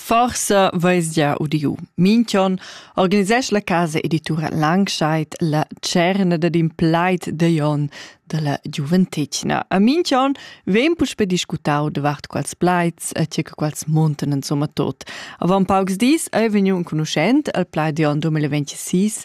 Forsa veis gia udiu. Minchon organisesch la casa editura Langscheid la cerna dad in plaid de Jon della giuventetgna. A Minchon vem puspe discutau davart quals plaids e tge quals monten insomma tot. Avant paucs dis ei vegniu un conoscent al plaid de Jon 2026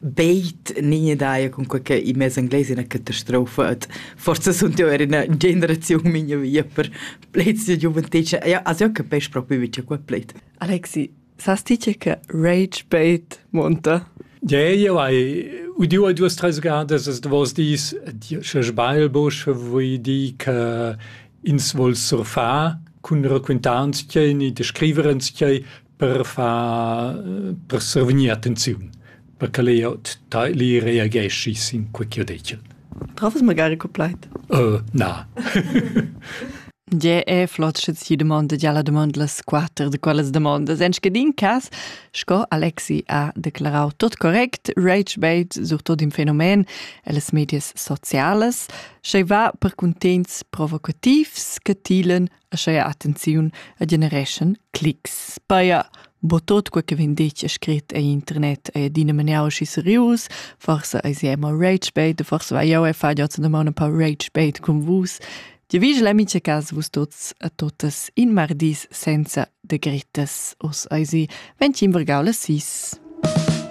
Beit nie daia cun quei che i mes anglais ina catastrofa et forsa sunt io er ina generaziun mia via per plets de giuventetg ja also io capesch proprio vice qua pleit Alexi sas ti che che rage bait monta Ja ja vai udiu a duas tres gadas es davos dis sche sbail bosch voi di che ins vol surfa cun raquintants tgei ni de scriverens tgei per far per survegnir attenziun, per ch'el eir li reageschi sin quai chi ho detg el. Travas magari cul plaid? na. Gie è flot sche ti dumondas ja la dumond las quatter de quellas demondas. En scadin cas, sco Alexi ha declarau tot correct, rage bait surtot in fenomen ellas medias socialas, sche va per cuntents provocativs che tilen Ascheia attenziun e genereschan clics. Speia, bo tot quei che vegn detg e scrit ei internet e adina maniau schi serius, forse ei si mo rage bait, forse vai jau e fa già una mano pa rage bait con vus. Dio vigel in mincha cas vus tots a totas in mardis senza de gritas. Os ei si 25 sis.